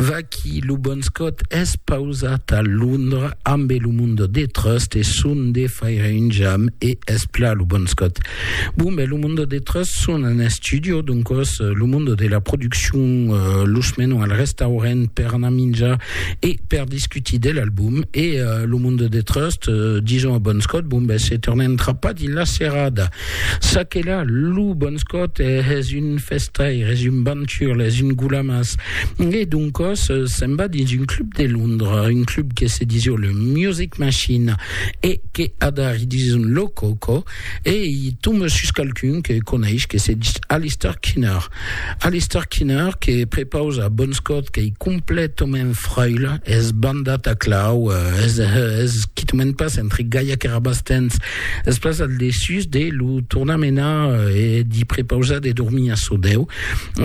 Vaqui lo bon Scott es pausat a Londra ambe lo Mundo de Trust e son de faire un jam e es pla lo bon Scott. Bon ben lo Mundo de Trust son en estudio doncos lo Mundo de la produccion los menon al restaurent per anar minjar e per discutir de l'album e lo Mundo de Trust dison a bon Scott bon ben se tornem trapar dins la serada. Ça que là, lo bon scot es un festaire, es un banturle, es un goulamas. E doncos se'n va dins un club de Londres, un club que se disio le Music Machine e que adari dison lo coco e i tombe sus qualqu'un que coneish que se dis Alistair Kinner. Alistair Kinner que prepausa bon scot qu'ei completament fraile, es bandat a clau, es, es quitament pas entre gaiac e rabastens, Es pas al dessús de lo tornar menar e d'i prepausar de dormir a çò deu.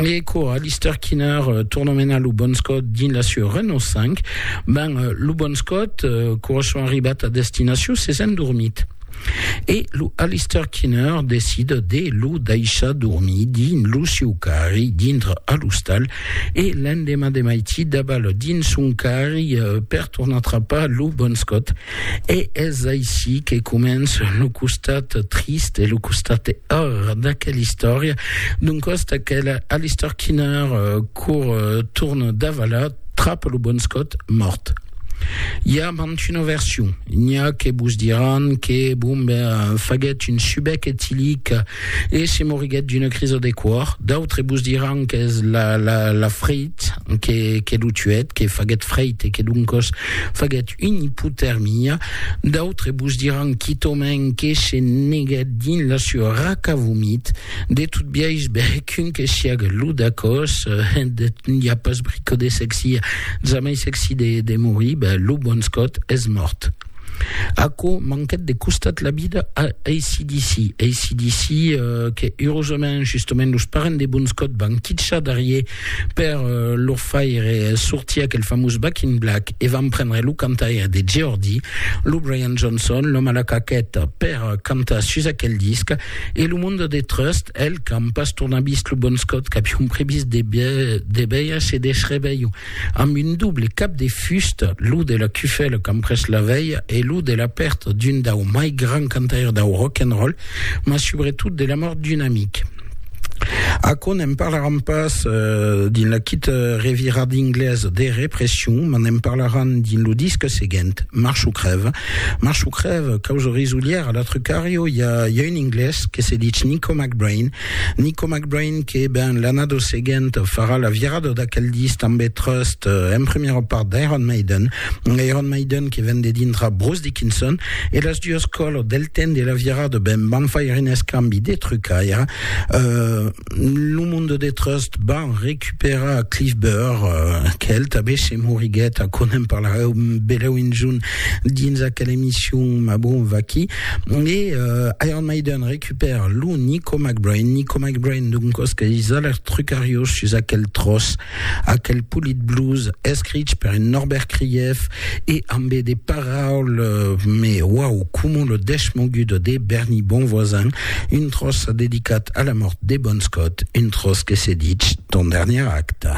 E quò, Alistair Kinner torna menar lo Bon Scott dins la sua Renault 5. Ben, lo Bon Scott, quò son arribat a destinacion, s'es endormit. E lo Alistair Kinner decida de lo daishar dormir dins lo sieu carri dintre a l'ostal e l'endemà de maití dabal dins son carri per tornar trapar lo Bon Scott. E es aicí que començ lo costat trist e lo costat or d'aquela istòria, d'un còst aquela Alistair Kinner cour torn davalar trap lo bon Scott mòrt. I a mantuna version, n'i a que vos diràn que Bombay faguèt un subec etilic E se moriguèt d'una crisa de còr, d'autres vos diràn qu'es la freit que lo tuèt, que faguèt freit e que doncòs faguèt una ipotèrmia. D'autres vos diràn quitòmens que se neguèt dins la sua raca vomit. De tot biais, bèc, un que siaga lo dacòs, n'i a pas brico de sexi, jamai sexi de morir, ben, lo bon Scott es mòrt. Aquò manquèt de costat la vida a ACDC. ACDC euh, que, eurosament, justament, los parents de Bon Scott van quitchar darrier per euh, leur faire euh, sortir aquel famós Back in Black e van prendre lo cantaire de Geordie, lo Brian Johnson, l'òme a la caqueta, per euh, cantar sus aquel disc. E lo monde de Trust, el, qu'an pas tornat vist lo Bon Scott, qu'avion previst de, de veire se desreveilhon. amb un doble cap de fusta, lo de la cufèla qu'an pres la velha e lo de la pèrta d'un dau mai grand cantaire dau rock and roll, mas subretot de la mòrt d'un amic. Aquò ne'n parlaràn pas dins la quita revirada inglesa de Repression, mas ne'n parlaràn dins lo disc seguent, March o crèv. March o crèv, causa risolièra, l'altre cario i a un inglés que se dich Nico McBrain, Nico McBrain que, ben, l'annada seguent farà la virada d'aquel disc tanbe trust en premiera part d'Iron Maiden, Iron Maiden que ven de dintra Bruce Dickinson e las duas colors del temps de la virada, ben, van faire un escambi de trucaire, lo monde de trust van recuperar Cliff Burr, qu'el tanbe se moriguèt, aquò n'en parlareu belèu un jorn dins aquela emission, ma bon, vaquí, e Iron Maiden recupera Per lo Nico McBrain, Nico McBrain d'un cosque disa lèr trucariós sus aquel tròç, aquel polit blues escrich per un Norbert Krief e ambe de paraules me uau coma lo dèsh mogudo de Bernie Bonvoisin, un tròç dedicat a la mòrt de Bon Scott, un tròç que se ditz Ton dernier acte.